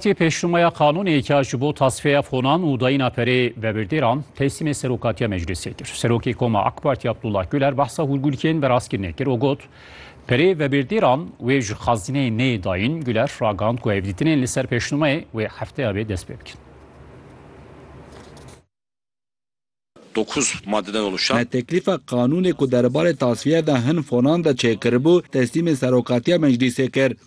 Ti pêşnûmeya qanûnê ke ji bo tasfeya fonan û dayîna perê vebirdêran teslîmê Serokatiya Meclîsê kir. Serokê Koma AK Partî Abdullah Guler behsa hûrgûlkên veraskirine kir û got, Perê vebirdêran wê ji xezîneyê neyê dayîn. Guler ragihand ku hevdîtinên li ser pêşnûmeyê wê hefteya bê dest pê bikin. Dokuz maddeden oluşan. Me teklîfa qanûnê ku derbarê tasfiye de hin fonan de çêkiribû, teslîmê Serokatiya Meclîsê kir.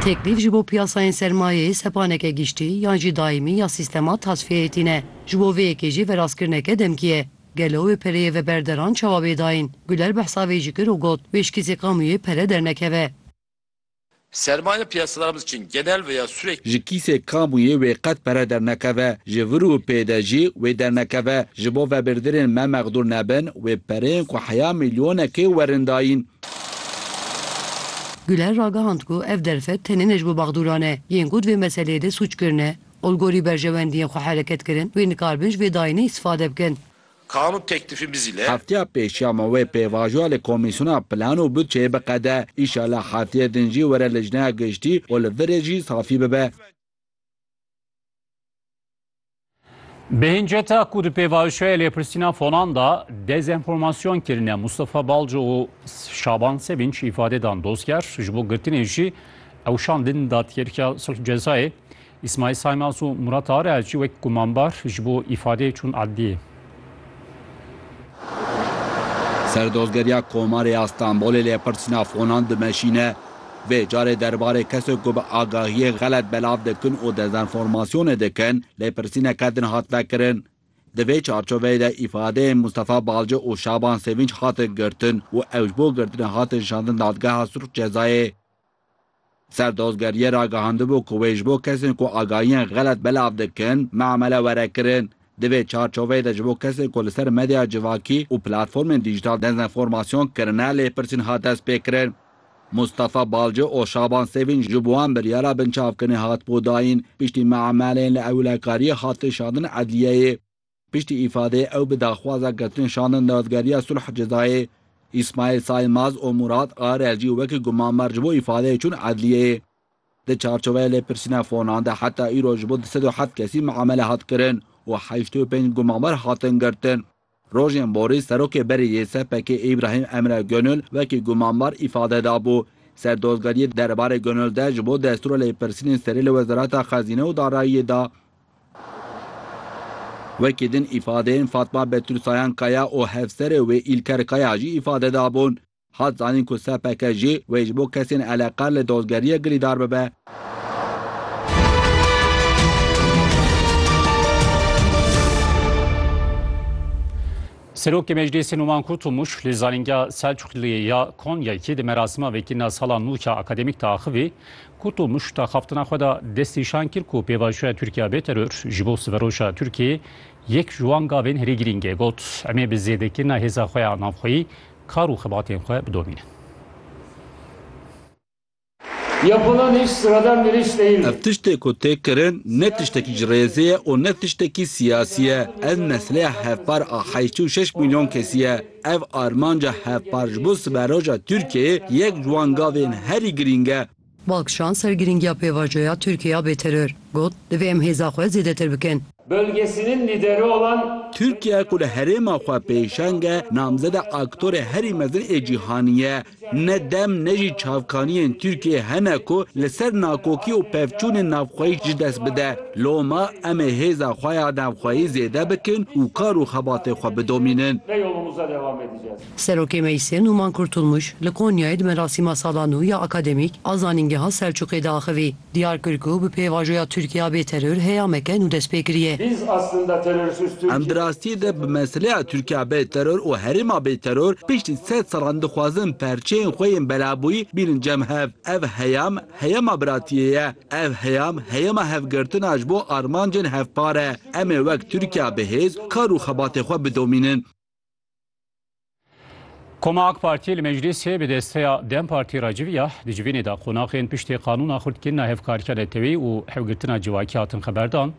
Teklîf ji bo piyasayên sermayeyê sepaneke giştî yan jî daîmî ya sîstema tasfiyeyê tîne. Ji bo vê yekê jî verastkirineke demkî ye. Gelo wê pereyê veberderan çawa bê dayîn? Guler behsa vê jî kir û got, Wê ji kîsê kamûyê pere dernekeve. Sermaye piyasalarımız için genel veya sürekli. Ji kîsê kamuyê wê qet pere dernekeve, ji vir û pê de jî wê dernekeve. Ji bo vebirdirên me mexdûr nebin, wê pereyên ku heya milyonekê werin dayîn. Güler ragihand ku ev derfet tenê ne ji bo mexdûran e yên ku di vê meseleyê de sûc kirine, olgorî berjewendiyên xwe hereket kirin wê nikaribin ji vê dayînê îstîfade bikin. Kanun teklifi bi zîle. Hefteya pêş ya ma wê pêvajoya li Komîsyona Plan û Budçeyê biqede. Înşallah hefteyê din jî were Lijneya Giştî û li vir rê jî safî bibe. Bi hinceta ku di pêvajoya lêpirsîna fonan de dezenformasyon kirine, Mustafa Balco û Şaban Sevinç îfade dan dozger, ji bo girtinê jî ewşan din Dadgerîya Sulh Cezayê. Îsmaîl Saymaz û Murat Areacî wek gumanbar ji bo îfadeyê çûn edliyê. Serdozgeriya Komarê ya Stenbolê lêpirsîna fonan dimeşîne. Vê carê derbarê kesên ku bi agahiyê xelet belav dikin û dezenformasyonê dikin lêpirsîneke din hat vekirin. Di vê çarçoveyê de îfadeyên Mustafa Balcı û Şaban Sevinç hatin girtin û ew ji bo girtinê hatin şandin Dadgeha Surx Cezayê. Serdozgeriyê ragihandibû ku wê ji bo kesên ku agahiyên xelet belav dikin, memele were kirin. Di vê çarçoveyê de ji bo kesên ku li ser medya civakî û platformên dîjîtal dezenformasyon kirine lêpirsîn hat destpêkirin. Mustafa Balci û Şaban Sevîn ji bo wan biryara binçavkirinê hatibû dayîn, piştî memeleyên li ewlekariyê hat kişandin edliyeyê. Piştî îfadê ew bi daxwaza girtin şandin dawetgeriya sulh cezayê. Îsmaîl Saîmaz û Mûrad Arel jî wekî gumanbar ji bo îfadeyê çûn edliyeyê. Di çarçoveya lêpirsîna fonan de heta îro ji bo du sed û heft kesî miamele hat kirin û heştê û pênc gumanbar hatin girtin. Rojên borî serokê berê yê SPK'ê Îbrahîm Emre Gönül wekî gumanbar îfade dabû. Ser dozgeriyê derbarê Gönül de ji bo destûra lêpirsînên serê li Wezareta Xezîne û Darayiyê da Wekî din îfadeyên Fatma Betûl Sayan Kaya û hevserê wê Îlker Kaya jî îfade dabûn. Hat zanîn ku SPK jî wê ji bo kesên eleqer li dozgeriyê girîdar bibe. Serokê Meclîsê Numan Kurtulmuş li Zanîngeha Selçuxliyê ya Konyayê di merasima vekirina sala nû ya akademîk de axivî Ku to muşta xaftina xwe de destnîşan kir ku pêvajoya Tirkiye bê teror ji bo siberoja Tirkiyeyê yek ji wan gavên herî girîng e. Got, Em ê bi zêdekirina hêza xwe ya navxweyî kar û xebatên xwe bidomînin. Ev tiştê ku tê kirin ne tiştekî ji rêzê ye û ne tiştekî siyasî ye. Ev meseleya hevpar a heşt û şeş mîlyon kesî ye. Ev armanca hevpar ji bo siberoja Tirkiyeyê yek ji wan gavên herî girîng e. Balkişan ser girîngiya pêvajoya Tirkiye ya bêteror got, Divê em hêza xwe zêdetir bikin. Bölgesinin lideri olan. Tirkiye ku li herêma xwe pêşeng e, namzeda aktorê herî mezin ê cîhanî ye. Ne dem ne jî çavkaniyên Tirkiyeyê hene ku li ser nakokî û pevçûnên navxweyî ji dest bide. Loma em ê hêza xwe ya navxweyî zêde bikin û kar û xebatê xwe bidomînin. Serokê Meclîsê Nûman Kurtulmuş li Konyayê di merasîma sala nû ya Akademîk a Zanîngeha Selçûqê de axivî. Diyar kir ku bi pêvajoya Tirkiya bê teror heyameke nû dest pê kiriye. Em di rastiyê de bi meseleya Tirkiya bê teror û herêma bê teror piştî sed salan dixwazin perçeyên xwe yên belabûyî bînin cem hev. Ev heyam heyama biratiyê ye. Ev heyam heyama hevgirtina ji bo armancên hevpar e. Em ê wek Tirkiya bi hêz kar û xebatê xwe bidomînin. Koma AK Partiyê li meclîsê bi desteya Dem Partî re civiya di civînê de qonaxên piştê qanûna xurtkirina hevkarîya netewî û hewgirtina civakî hatin xeberdan.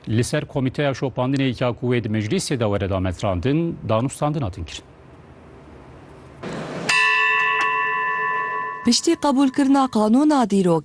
Li ser komîteya şopandinê ya ku wê di meclîsê de were dametrandin danûstandin hatin kirin. Piştî qebûlkirina qanûna dîrokî,